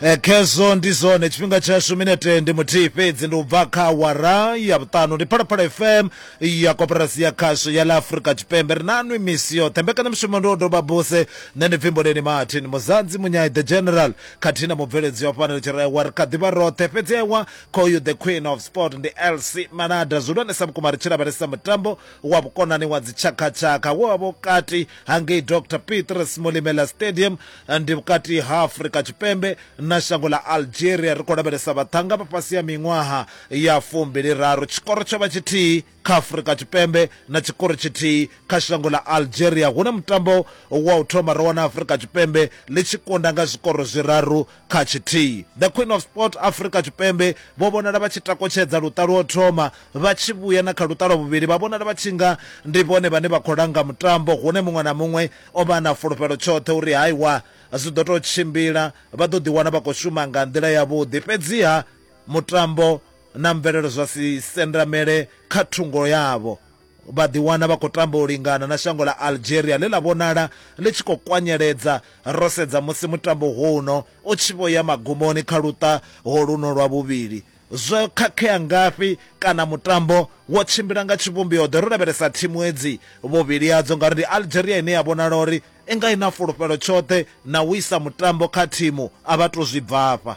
Eh, khezwo ndi zwone tshifhinga tshashu minete ndi muthihi fhedzi ndi u bva kha wara ya vhuṱanu ndi phalaphala fm ya koporasi ya khasho ya ḽa afurika tshipembe ri nanwi misi yoṱhe mbekanyamushumo ndi o doba buse nṋe ndi pfhi mboleni martin muzanzi munyai the general khathihi na mubveledzi wa fhano litshi rewa ri kha ḓivha roṱhe fhedzi ewa khoyu the queen of sport ndi lc manada zwihulwanesa vhukuma ri tshi lavhelesa mutambo wa vhukonani wa dzitshakhatshakha wo wa vhukati hangei dr petrus molimela stadium ndi vhukati ha afurika tshipembe na shango ḽa algeria ri khou lavhelesa vhaṱhanga vha fhasi ya miṅwaha ya fumbili raru tshikoro tsho vha tshithihi kha afurika tshipembe na tshikoro tshithihi kha shango ḽa algeria hune mutambo wa u thoma ro wana afurika tshipembe ḽi tshi kunda nga zwikoro zwiraru kha tshithihi the queen of sport afurika tshipembe vho vhonala vha tshi takotshedza luṱa lwo thoma vha tshi vhuya na kha luṱa lwa vhuvhili vha vhonala vha tshi nga ndi vhone vhane vha khou langa mutambo hune muṅwe na muṅwe O vha a na fulufhelo tshoṱhe uri ha iwa zwi ḓo tou tshimbila, vha ḓo ḓiwana vha khou shuma nga nḓila yavhuḓi. Fhedziha mutambo na mvelelo zwa si sendamele kha thungo yavho. Vha ḓiwana vha khou tamba u lingana na shango ḽa Algeria ḽe ḽa vhonala ḽi tshi khou kwanyeledza, ro sedza musi mutambo hono u tshi vho ya magumoni kha luṱa holuno lwa vhuvhili. Zwo khakhea ngafhi kana mutambo wo tshimbila nga tshivhumbeo-ḓe ro lavhelesa thimu hedzi, vhuvhili hadzo ngauri ndi Algeria ine ya vhonala uri i nga i na fulufhelo tshoṱhe na u isa mutambo kha thimu, a vha tou zwi bvafha.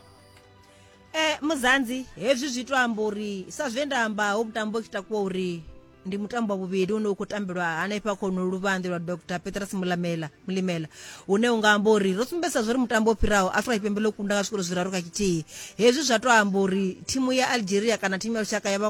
E, Muzanzi, hezwi zwi tou amba uri, sa zwe nda amba, ho vhutambo ki takuwa uri. ndi mutambo wa vhuvhili une u khou tambelwa hanefha khono luvhanḓe lwa dr petrus mulamela mulimela une u nga amba uri ro sumbedzisa zwo ri mutambo o fhiraho afrika tshipembe ḽo kunda nga zwikolo zwiraru kha tshithihi hezwi zwa tou amba uri thimu ya algeria kana thimu ya lushaka ya vha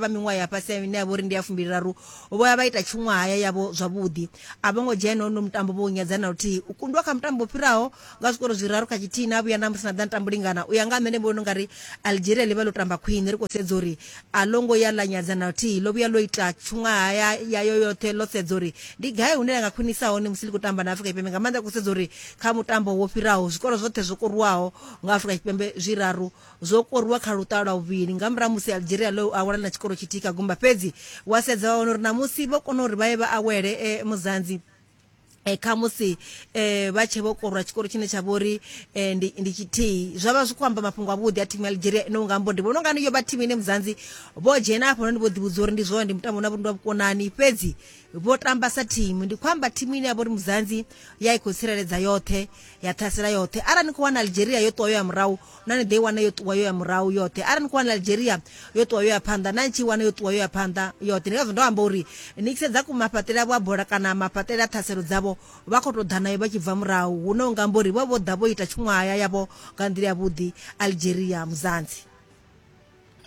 miṅwaha ya fhasi ine ya vha uri ndi ya fumbiliraru vho ya vha ita tshuṅwahaya yavho zwavhuḓi a vho ngo dzhena hono mutambo vho u nyadza na luthihi u kundwa kha mutambo o fhiraho nga zwikoro zwiraru kha tshithihi na vhuya namusi na ḓa ni tambulingana u ya nga nṋe ndi vhona ungari algeria ḽi vha ḽo tamba khwine ri khou sedza uri a ḽo ngo ya ḽa nyadza na luthihi ḽo vhuya ḽo ita tshungaha ya yayo yoṱhe ḽo sedza uri ndi gai hune ḽa nga khwinisa hone musi ḽi khou tamba na afrika tshipembe nga maanḓa ri khou sedza uri kha mutambo wo fhiraho zwikoro zwoṱhe zwo koruwaho nga afrika tshipembe zwiraru zwo koruwa kha luṱaha lwa vhuvhili nga murahu musi algeria ḽo awela na tshikoro tshithihi kha gumba fhedzi wa sedza wa wana uri namusi vho kona uri vha ye vha awele e, muzanzi eh, khamusi eh, vha tshe vho korwa tshikoro tshine tsha vho ri eh, ndi, ndi tshithihi zwa vha zwi khou amba mafhungo avhuḓi a thimu ya algeria ino nga mbo ndi vhona ungani yo vha thimu ine muzanzi vho dzhena afho noni vho ḓivhudza uri ndi zwone ndi mutambo na vhundi wa vhukonani fhedzi vho tamba sa thimu ndi khou amba thimu ine ya vho ri muzanzi ya i khou tsireledza yoṱhe ya ṱhasela yoṱhe arali ni khou wana algeria yo ṱuwa yo ya murahu na ni ḓo i wana yo ṱuwa yo ya murahu yoṱhe arali ni khou wana algeria yo ṱuwa yo ya phanḓa na ni tshi i wana yo ṱuwa yo ya phanḓa yoṱhe ndi ngazwo ndo amba uri ni tshi sedza mafhaṱele avho a bola kana mafhaṱele a ṱhaselo dzavho vha khou tou ḓa nayo vha tshi bva murahu hune u nga amba uri vho vho ḓa vho ita tshuṅwahaya yavho nga nḓila yavhuḓi algeria muzanzi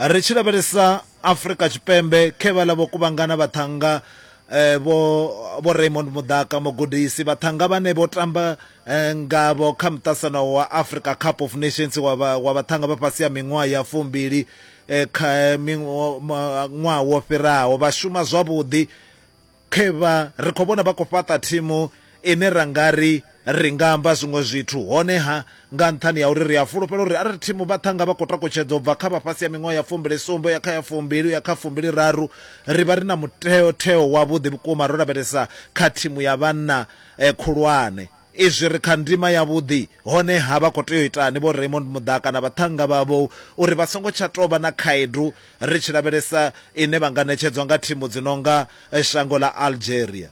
ri tshi lavhelesa afrika tshipembe khe vhaḽa vho kuvhangana vhaṱhanga eh, vho vho raymond mudaka mugudisi vhaṱhanga vhane vho tamba eh, ngavho kha muṱasano wa africa cup of nations wa vhaṱhanga vha fhasi ya miṅwaha ya fumbili eh, kha ṅwaha wo fhiraho vha shuma zwavhuḓi Khevha ri khou vhona vha khou fhaṱa thimu ine ra nga ri ri nga amba zwiṅwe zwithu. Hone-ha, nga nṱhani ha uri ri a fulufhela uri arali thimu vha ṱhanga vha khou takutshedza u bva kha vha fhasi ha miṅwaha ya fumbili sumbe u ya kha ya fumbili u ya kha fumbili raru, ri vha ri na mutheo-theo wavhuḓi vhukuma ro lavhelesa kha thimu ya vhanna khulwane. Izwi ri kha ndima yavhuḓi, honeha vha khou tea u itani Vho Raymond Muḓaka na vhaṱhannga vhavho uri vha songo tsha tou vha na khaedu ri tshi lavhelesa ine vha nga ṋetshedzwa nga thimu dzi no nga shango ḽa Algeria?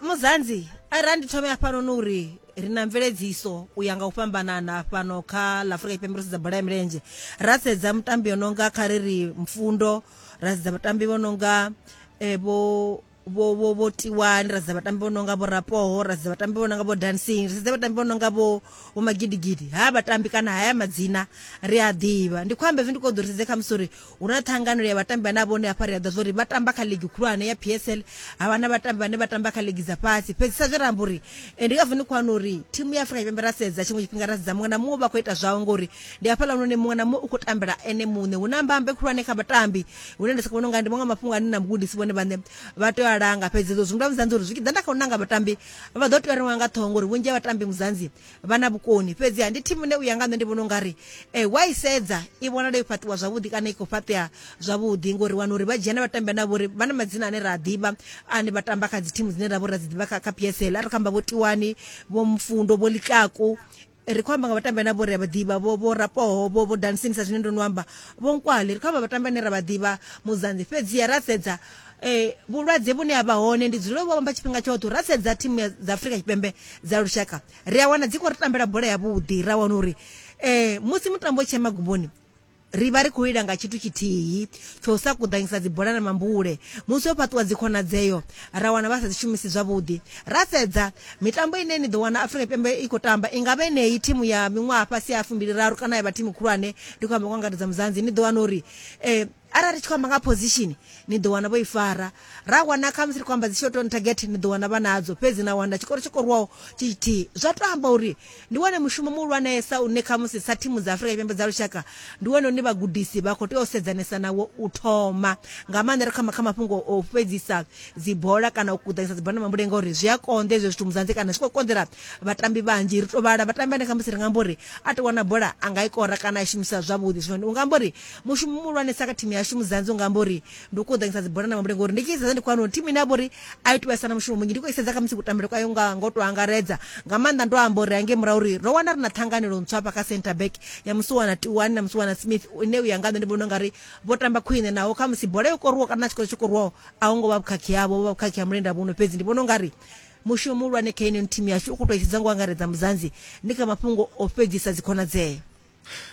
Muzanzi, Arali ndi thome hafhanoni u ri, ri na mveledziso u ya nga u fhambanana fhano kha ḽa Afrika Tshipembe ro sedza bola ya milenzhe, ra sedza mutambi o no nga kha ri ri Mfundo, ra sedza vhatambi vho no nga vho. vho vho vho tiwani ra sedza vhatambi vho no nga vho rapoho ra sedza vhatambi vho no nga vho dancing ri sedza vhatambi vho no nga vho vho magidigidi ha vhatambi kana haya madzina ri a ḓivha ndi khou amba hezwi ndi khou ḓo ri sedze kha musi uri hu na ṱhanganelo ya vhatambi vhane a vhone hafha ri a ḓa zwa uri vha tamba kha ligi khulwane ya p s l ha vha na vhatambi vhane vha tamba kha ligi dza fhasi fhedzi sa zwe ra amba uri ndi ngazwo ndi khou wana uri thimu ya afrika tshipembe ra sedza tshiṅwe tshifhinga ra sedza muṅwe na muṅwe vha khou ita zwawe ngori ndi hafhaḽa hune muṅwe na muṅwe u khou tambela ene muṋe hu na mbambe khulwane kha vhatambi hune nda sokou vhona unga ndi maṅwe mafhungo ane na mugudisi vhone vhaṋe vha tea u a langa fhedzi ezwo zwi nga vhudzanzi uri zwi tshi ḓa nda kha u nanga vhatambi vha ḓo tea u renga nga ṱhoho ngori vhunzhi ha vhatambi muzanzi vha na vhukoni fhedzi ha ndi thimu ine u ya nga nṋe ndi vhona u nga ri um wa i sedza i vhonala yo fhaṱiwa zwavhuḓi kana i khou fhaṱea zwavhuḓi ngori wana uri vha dzhia na vhatambi ane vhori vha na madzina ane ra a ḓivha ane vha tamba kha dzi thimu dzine ra vho ra dzi ḓivha kha kha psl a ri kho amba vho tiwani vho mfundo vho likaku ri khou amba nga vhatambi ane vho ri a vha ḓivha vho vho rapoho vho vho dansini sa zwine ndo no amba vho nkwali ri khou amba vhatambi ane ra vha ḓivha muzanzi fhedziha ra sedza um vhulwadze vhune ha vha hone ndi dzulele vho amba tshifhinga tshoṱhe ra sedza thimu dza afurika tshipembe dza lushaka ri a wana dzi khou ri tambela bola yavhuḓi ra wana uri um musi mutambo tshee magumboni Ri vha ri khou lila nga tshithu tshithihi, tsha u sa kuḓanyisa dzibola na mambule. Musi ho fhaṱiwa dzikhonadzeo, ra wana vha sa dzi shumisi zwavhuḓi. Ra sedza, mitambo ine ni ḓo wana Afrika Tshipembe i khou tamba i nga vha yeneyi, thimu ya miṅwaha fhasi ha fumbiliraru kana ya vha thimu khulwane, ndi khou amba nga u angaredza Muzanzi. Ni ḓo wana uri arali ri tshi khou amba nga position, ni ḓo wana vho i fara. Ra wana khamusi ri khou amba dzi short on target, ni ḓo wana vha nadzo, fhedzi na wana tshikoro tsho koriwaho tshi tshithihi. Zwa tou amba uri. Ndi wone mushumo muhulwanesa une khamusi sa thimu dza Afrika Tshipembe dza lushaka ndi wone une vhagudisi vha khou tea u sedzanesa nawo u thoma, nga maanḓa ri kha mafhungo o fhedzisa dzibola kana u kuḓanyisa dzibola na mambule ngauri zwi a konḓa hezwo zwithu Muzanzi kana zwi khou konḓela vhatambi vhanzhi. Ri tou vhala vhatambi vhane khamusi ri nga amba uri a tou wana bola a nga i kora kana a i shumisa zwavhuḓi. Zwino u nga amba uri mushumo muhulwanesa kha thimu yashu Muzanzi u nga amba uri ndi u kuḓanyisa dzibola na mabule ngori ndi tshi sedza ndi khou wana uri thimu ine ya vha uri a i tu vhesa na mushumo munzhi ndi khou i sedza khamusi kutambele kwayo nga ngo to angaredza nga maanḓa ndo amba uri hange murahu uri ro wana ri na ṱhanganelo ntswa hafha kha center back ya musi wana tiwani na musi wana smith ine u ya nga nṋe ndi vhona ungari vho tamba khwine naho khamusi bola yo koruwa kana na tshikolo tsho koruwaho a hu ngo vha vhukhakhi yavho vho vha vhukhakhi ha mulenda vhuno fhedzi ndi vhona ungari mushumo muhulwane kha ino thimu yashu u khou tou i sedza ngo angaredza muzanzi ndi kha mafhungo o fhedzisa dzikhonadzeo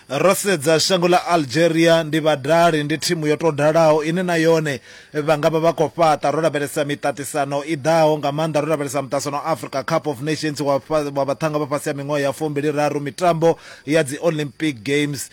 Ro sedza shango ḽa Algeria, ndi vhadali, ndi thimu yo tou dalaho ine na yone vha nga vha vha khou fhaṱa. Ro lavhelesa miṱaṱisano i ḓaho, nga maanḓa ro lavhelesa muṱaṱisano wa Africa Cup of Nations wa vhaṱhanga vha fhasi ha miṅwaha ya fumbiliraru, mitambo ya dzi Olympic Games.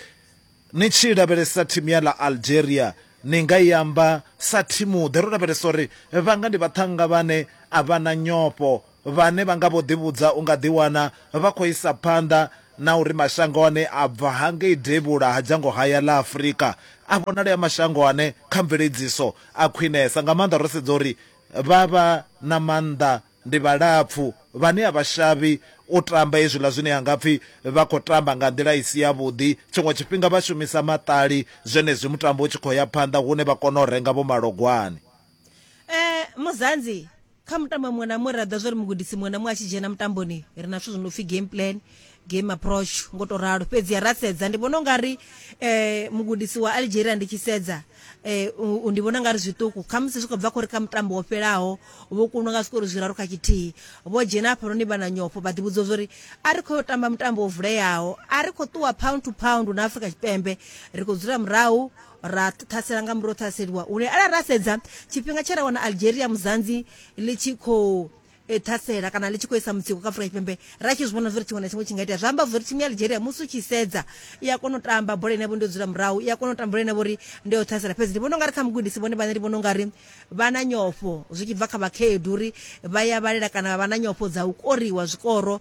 Ni tshi lavhelesa thimu ya ḽa Algeria, ni nga i amba sa thimuḓe. Ro lavhelesa uri vhanga ndi vhaṱhanga vhane a vha na nyofho, vhane vha nga vho ḓivhudza u nga ḓiwana vha khou isa phanḓa na uri mashango ane a bva hangei devhula ha dzhango haya ḽa Afrika a vhonale a mashango ane kha mveledziso a khwinesa nga maanḓa ro sedza uri vha vha na maanḓa ndi vhalapfu vhane a vha shavhi u tamba hezwiḽa zwine ha nga pfi vha khou tamba nga nḓila i si yavhuḓi. Tshiṅwe tshifhinga vha shumisa maṱali zwenezwi mutambo u tshi khou ya phanḓa hune vha kona u renga vho malogwane. eh muzanzi kha mutambo muṅwe na muṅwe ra ḓa zwori mugudisi muṅwe na muṅwe a tshi dzhena mutamboni ri na zwithu zwi no pfhi game plan game approach ngo to ralo fhedzi ya ra sedza ndi vhona ungari eh mugudisi wa Algeria ndi tshi sedza eh u- u- ndi vhona ungari zwiṱuku kha musi zwi khou bva khori kha mutambo wo fhelaho vho kunwa nga zwiṱori zwiraru kha tshithihi vho dzhena hafha noni vha na nyofho vha ḓivhudza zwori a ri khou tamba mutambo wo vuleyaho a ri khou ṱuwa pound to pound na Afrika Tshipembe ri khou dzula murahu ra ṱhasela nga murahu ṱhaseliwa une arali ra sedza tshifhinga tshe ra wana algeria muzanzi ḽi tshi khou e, ṱhasela kana ḽi tshi khou isa mutsiko kha afrika tshipembe ra tshi zwi vhona zwori tshiṅwe na tshiṅwe tshi nga itea zwi amba zwori thimu ya algeria musi u tshi sedza i a kona u tamba bola ine vho ndi dzula murahu i a kona u tamba bola ine vhori ndi ya u ṱhasela fhedzi ndi vhona ungari kha mugudisi vhone vhane ndi vhona ungari vha na nyofho zwi tshi bva kha vhakhaedu uri vha ya vhalela kana vha vha na nyofho dza u koriwa zwikoro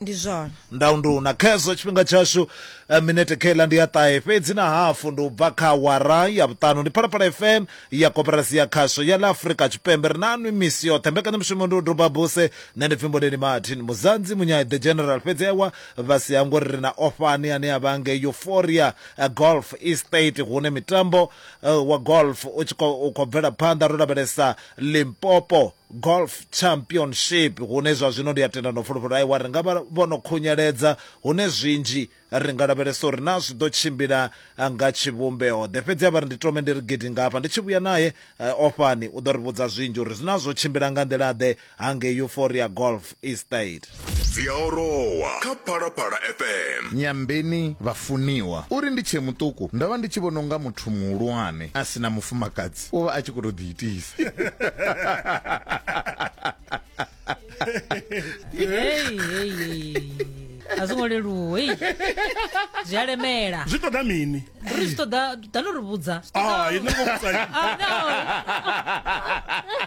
Ndi zwone. Ndau nduna. Khezwo tshifhinga tshashu eh, minete kha iḽa ndi ya ṱahe fhedzi na hafu ndi u bva kha awara ya vhuṱanu ndi phalaphala fm ya koporasi ya khasho ya ḽa afurika tshipembe ri na nwi misi yoṱhe mbekanyamushumo ndi u duba buse nṋe ndi pfi mboneni martin muzanzi munyai the general fhedzi ewa vha si hango ri ri na ofani ane a vha ngei euphoria eh, golf estate hune mitambo eh, wa golf u tshi khou u khou bvela phanḓa ro lavhelesa limpopo Golf Championship hune zwa zwino ndi a tenda no fulufhelo aiwa ri nga vha vho no khunyeledza hune zwinzhi ri nga lavhelesa uri naa zwi ḓo tshimbila nga tshivhumbeo-ḓe. Fhedzi a vha ri ndi tome ndi ri gidi nga hafha, ndi tshi vhuya nae ofhani u ḓo ri vhudza zwinzhi uri naa zwo tshimbila nga nḓila-ḓe hangei Euphoria Golf. Estate. dzi a orowa kha phalaphala fm nyambeni vhafuniwa uri ndi tshee muṱuku ndo vha ndi tshi vhona unga muthu muhulwane a si na mufumakadzi u vha a tshi khou tou ḓiitisa Hey, hey, hey, hey. a zwo ngo leluwa hey. zwi a lemela zwi ṱoḓa mini ri zwi ṱoḓa dano ri vhudza Zwi ṱoḓa- Ah, inna vho vhudza inna. Ah, no.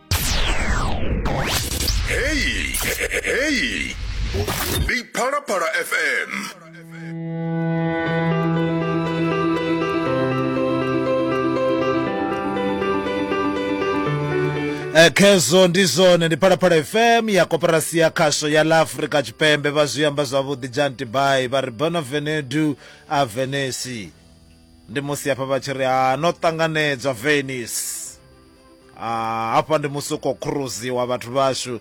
Hey, hey. Di para para FM. Eh, khezwo ndi zwone ndi phalaphala fm ya koporasi ya khasho ya la afrika tshipembe vha zwi amba zwavhuḓi janti bai vha ri bona venedu a venesi ndi musi hafha vha tshi ri ha no ṱanganedzwa venice ah, hafha ndi musi u khou khuruziwa vhathu vhashu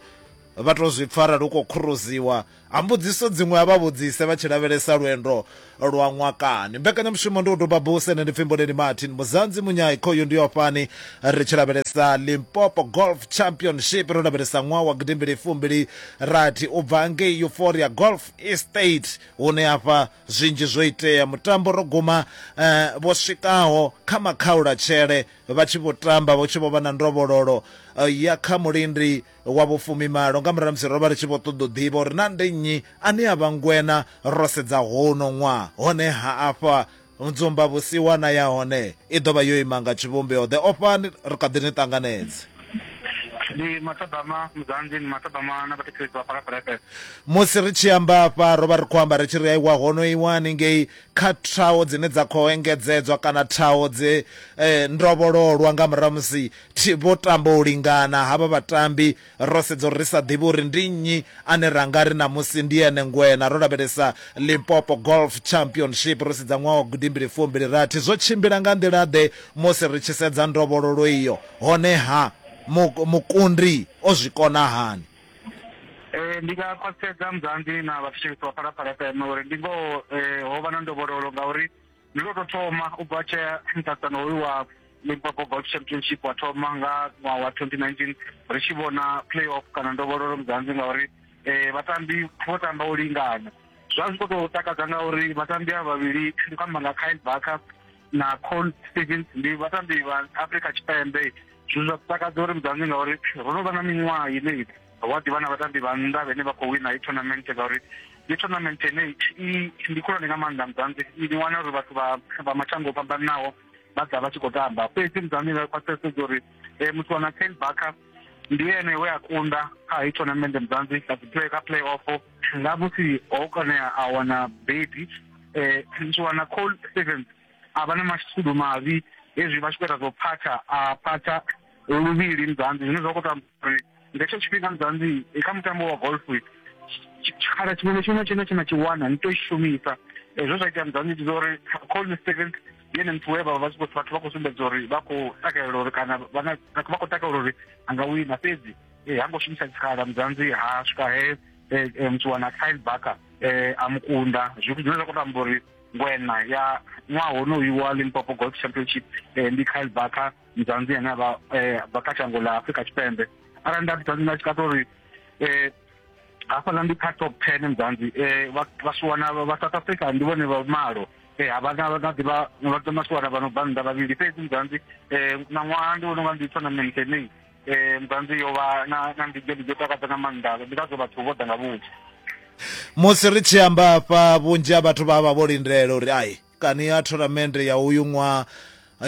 vha to zwi pfa arali u khou khuruziwa a mbudziso dziṅwe a vha vhudzise vha tshi lavhelesa lwendo lwa ṅwakani mbekanyamushumo ndi u duba buse ne ndi pfi mboleni martin muzanzi munyai khoyu ndi yo fhani ri tshi lavhelesa limpopo golf championship ro lavhelesa ṅwaha wa gidimbili fumbili rathi u bva ngei euphoria golf estate hune hafha zwinzhi zwo itea mutambo ro guma eh, vho swikaho kha makhaulatshele vha tshi vho tamba vho tshi vho vha na ndovhololo eh, ya kha mulindi wa vhufumimalo nga murahu musi ro vha ri tshi vho ṱoḓa u ḓivha uri na ndi nnyi ane a vha ngwena ro sedza hono ṅwaha honeha afha nzumba vhusiwana ya hone i ḓo vha yo ima nga tshivhumbeo ḓe ofhani ri kha ḓi ni ṱanganedze ndi matabama mudzanzi ndi matabama na vhathetshelesi vha phalaphalapele musi ri tshi amba afha ro vha ri khou amba ri tshi ri aiwa hono iwani ngei kha thaho dzine dza khou engedzedzwa kana thaho dze eh, ndovhololwa nga murahu musi thi- vho tamba u lingana havha vhatambi ro sedza uri ri sa ḓivhi uri ndi nnyi ane ra nga ri ṋamusi ndi ene ngwena ro lavhelesa limpopo golf championship ro sedza ṅwaha wa gudimbili fumbili rathi zwo tshimbila nga nḓila-ḓe musi ri tshi sedza ndovhololo iyo honeha mu- mukundi o zwi kona hani Eh, ndi nga khwaṱhisedza muzanzi na vhathetshelesi vha phalaphala fm uri ndi ngoho eh, ho vha na ndovhololo ngauri ndi lwo tou thoma u bva tshea muṱaṱisano hoyu wa limpopo golf championship wa thoma nga ṅwaha wa 2019 ri tshi vhona play off kana ndovhololo muzanzi ngauri eh, vhatambi vho tamba u lingana zwa zwi khou tou takadza ngauri vhatambi a vhavhili ndi khou amba nga kyle barker na col stevens ndi vhatambi vha africa tshipembe zwithu zwa takadza uri mudzanzi ngauri ro no vha na miṅwaha ine wa ḓivha na vhatambi vha nnḓa vhene vha khou wina i tournament ngauri ndi tournament ine ndi khulwane nga maanḓa mudzanzi ni wana uri vhathu vha mashango o fhambananaho vha ḓa vha tshi khou tamba fhedzi mudzanzi vha khwaṱhisedza uri eh, muthu wana ten backer ndi ene we a kunda kha i tournament mudzanzi kha play off na musi ho konea a wana bebi eh ndi wana call Stevens a vha na mashudu mavhi hezwi vha tshi khou ita zwo phatha a phatha luvhili muzanzi zwine zwa khou ita uri nga hetsho tshifhinga muzanzi eh, kha mutambo wa golf tshikhala tshiṅwe na tshiṅwe tshine tshina tshi wana ni tou i shumisa hezwo zwa ita muzanzi ndi zwa uri call Stevens yene muthu we vha vha tshi khou vhathu vha khou sumbedza uri vha khou takalela uri kana vha na- vha khou takalela uri a nga wina fhedzi e, ha ngo shumisa tshikhala mudzanzi ha swika he e, e, mutsuwana kyle barker e, a mu kunda zwithu zwine zwa khou tamba uri ngwena ya ṅwaha honoyu wa limpopo golf championship e, ndi kyle barker mudzanzi ane a vha e, bva kha shango ḽa afrika tshipembe arali nda ḓisa nda tshikata uri e, hafhaḽa ndi kha top ten mudzanzi e, vha- vhasiwana vha vha south africa ndi vhone vha malo Eh, ha vha na vha na ḓivha vha ḓo masiwana vha no bva nnḓa vhavhili fhedzi mudzanzi eh, na ṅwaha ndi vhona unga ndi tournament ine eh ntanzi yo vha na na ndidzo ndidzo takadza nga maanḓa ndi ngazwo vhathu vho ḓa nga vhunzhi musi ri tshi amba afha vhunzhi ha vhathu vha vha vho lindela uri ai kani ya tournament ya uyu ṅwaha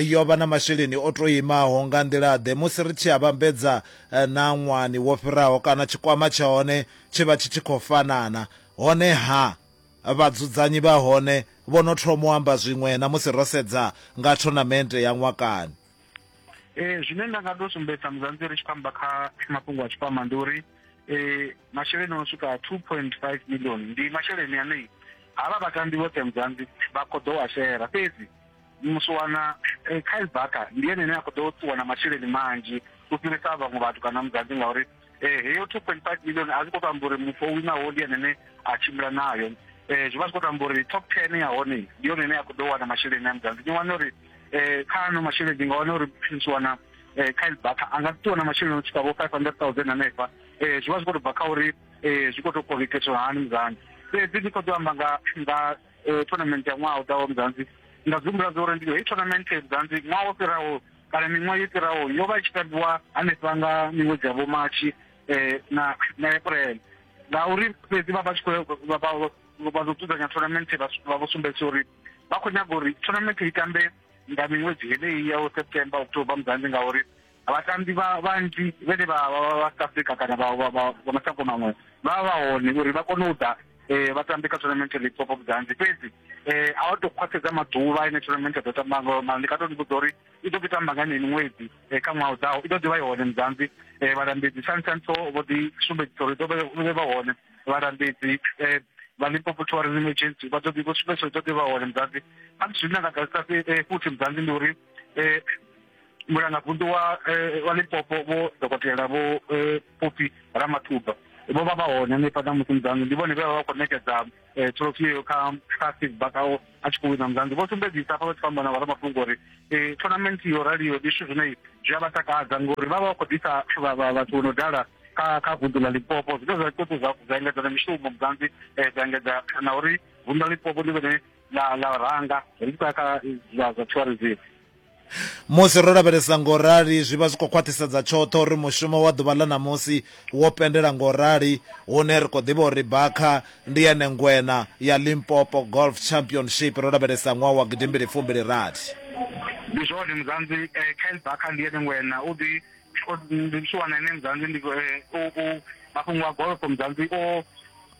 yo vha na masheleni o to imaho nga nḓila ḓe musi ri tshi a vhambedza eh, na ṅwani wo fhiraho kana tshikwama tsha hone tshi vha tshi tshi khou fanana hone ha vhadzudzanyi vha hone vho no thoma u amba zwiṅwe na musi ro sedza nga tournament ya ṅwakani ee zwine nda nga to sumbedza muzanzi ri tshi khou amba kha mafhungo a tshikwama ndi uri um masheleni o swika two point five million ndi masheleni anei havha vhatambi vhoṱhe muzanzi vha khou ḓo a shera fhedzi musiwana eh, kyle barker ndi ene ane a khou ḓo ṱuwa na masheleni manzhi u fhirisa vhaṅwe vhathu kana muzanzi ngauri eh, heyo two point five million a zwi khou to amba uri muthu o winaho ndi anene a tshimbila nayo um zwi vha zwi khou to amba uri top ten ya hone ndi yone ine ya khou ḓo wana masheleni a mudzanzi ni wana uri um kha ano masheleni ndi nga wana uri prince wana um kyle baka a nga ḓi wana masheleni o tshika vho five hundred thousand hanefha um zwi vha zwi khou to bva kha uri um zwi khou to kovheketshwa hani mudzanzi fhedzi ndi khou ḓo amba nga nga eh, tournament ya ṅwaha u ḓaho mzanzi nda zwi humbula zwa uri ndi heyi tournament mzanzi ṅwaha wo fhiraho kana miṅwaha yo fhiraho yo vha i tshi tambiwa hanefha nga miṅwedzi ya vhomatshi um na na april ngauri fhedzi vha vha tshi khou vha ḓo dzudzanya tournament vha vho sumbedzisa uri vha khou nyaga uri tournament i tambe nga miṅwedzi heneyi ya september october mzanzi ngauri Vhatambi vha vhanzhi vhane vha vha vha South Africa kana vha vha vha vha mashango maṅwe vha vha hone uri vha kone u ḓa eh, vha tambe kha tournament ya Limpopo of Mzansi fhedzi eh, a vha tou khwaṱhedza maḓuvha ine tournament ya ḓo tamba ngayo mara ndi nga tou ni vhudza uri i ḓo ḓi tamba nga yeneyi miṅwedzi eh, kha ṅwaha u ḓaho i ḓo ḓi vha i hone Mzansi eh, vhalambedzi sansanso vho ḓi sumbedzisa uri i ḓo vha i vha hone vhalambedzi eh, vha Limpopo Tourism Agency vha ḓo ḓi vho sumbedzisa uri i ḓo ḓi vha hone Mzansi a zwine nda nga ḓadzisa eh, futhi Mzansi ndi uri eh, mulangavunḓu wa eh, wa limpopo vho dokotela vho eh, pfufhi ramathuba vho vha vha hone hanefha na musi mudzanḓu ndi vhone vhe vha vha khou ṋekedza eh, trophy yeyo kha kha steve bakao a tshi khou wina mudzanḓu vho sumbedzisa hafha vha tshi khou amba na vharamafhungo uri eh, tournament yo raliyo ndi zwithu zwine zwi a vha takadza ngori vha vha vha khou ḓisa vha- vha- vhathu vho no dala kha kha vunḓu ḽa limpopo zwine zwa ṱoḓa zwa zwa engedza na mishumo mudzanḓi eh, zwa engedza na uri vunḓu ḽa limpopo ndi vhone ḽa ḽa ranga ri tshi khou ya kha eh, zwa zwa tourism Musi ro lavhelesa ngo rali, zwi vha zwi khou khwaṱhisedza tshoṱhe uri mushumo wa ḓuvha ḽa ṋamusi wo pendela ngo rali, hune ri khou ḓivha uri Barca ndi yene ngwena ya Limpopo Golf Championship ro lavhelesa ṅwaha wa gidimbili fumbili rathi. Ndi zwone Muzanzi, Kyle Barker ndi yene ngwena, u ḓi ndi tshi wana ene Muzanzi ndi mafhungo a golf Muzanzi o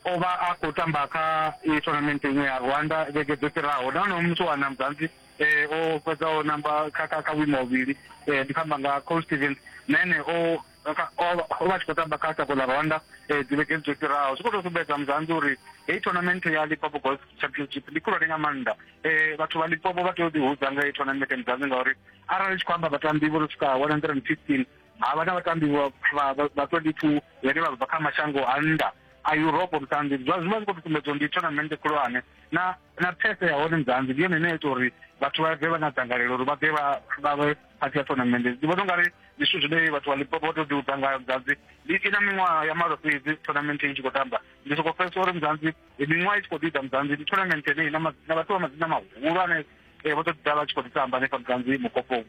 o vha a khou tamba kha tournament iṅwe ya Rwanda vhege dzo fhiraho nahone u mu tshi wana Muzanzi eh, o fhedzaho namba kha kha kha vhuimo ha vhuvhili eh, ndi khou amba nga col stevens na ene o kha- o vha o vha a tshi khou tamba kha shango ḽa rwanda eh, dzivhegeni dzo fhiraho zwi khou tou sumbedza muzanzi uri heyi tournament ya lipopo golf championship ndi khulwane nga maanḓa eh, vhathu vha lipopo vha tea u ḓihudza nga heyi tournament muzanzi ngauri arali tshi khou amba vhatambi vho no swika 115 havha na vhatambi vha- vha vha- vha 22 vhane vha bva kha mashango a nnḓa a europe mutambi zwa zwi vha zwi khou tou sumbedza uri ndi tournament khulwane na na phese ya hone nzanzi ndi yone ine ya ita uri vhathu vha bve vha na dzangalelo uri vha bve vha vhe phathi ya tournament ndi vhona ungari ndi zwithu zwine vhathu vha lipopo vha to ḓi udza ngayo mzanzi ndi i na miṅwaha ya malo fhedzi tournament i tshi khou tamba ndi soko pfesa uri mzanzi miṅwaha i tshi khou ḓiḓa mzanzi ndi tournament ine na vhathu vha madzina mahulwane eh, vho to ḓi ḓa vha tshi khou ḓi tamba hanefha mzanzi mukoponi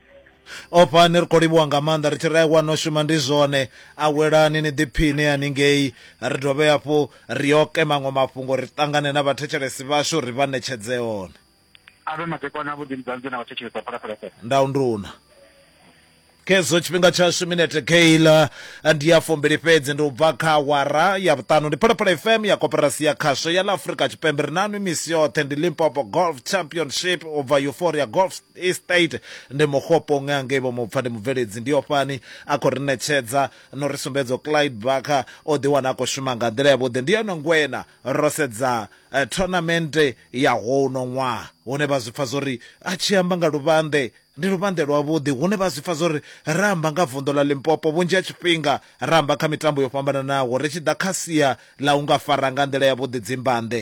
ofha ni ri khou livhuwa nga maanḓa ri tshi ri aiwa no shuma ndi zwone awelani ni ḓiphiine haningei ri dovhe hafhu ri oke maṅwe mafhungo ri ṱangane na vhathetshelesi vhashu ri vha ṋetshedze one a vhe madekwana a vhuḓi mudzanzi na vhathetshelesi a phalaphala fm ndau nduna khezwo tshifhinga tshashu minete keila ndi ya fumbili fhedzi ndi u bva kha awara ya vhuṱanu ndi phalaphala fm ya koperasi ya khasho ya ḽa afurika tshipembe ri nanwi misi yoṱhe ndi limpopo golf championship u bva euphoria golf Estate ndi Mokgopong a ngei Vhomupfa, ndi mubveledzi. Ndi ofhani a khou ri ṋetshedza na u ri sumbedza uri Clyde Barker o ḓiwana a khou shuma nga nḓila yavhuḓi. Ndi yone ngweṋa ro sedza thonamente ya houno ṅwaha hune vha zwi pfa zwo ri a tshi amba nga luvhanḓe ndi luvhanḓe lwavhuḓi, hune vha zwi pfa zwo ri ra amba nga vunḓu ḽa Limpopo vhunzhi ha tshifhinga ra amba kha mitambo yo fhambananaho ri tshi ḓa kha sia ḽa u nga fara nga nḓila yavhuḓi dzimbanḓe.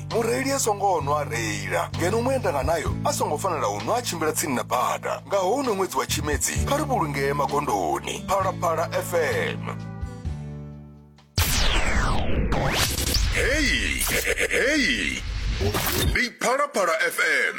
mureili a songo nwa a reila ngeno muendanga nayo a songo fanela u nwa a tshimbila tsini na bada nga houno ṅwedzi wa tshimedzi kha ri vhulungee magondoni phalaphala fm heyi heyi ndi phalaphala fm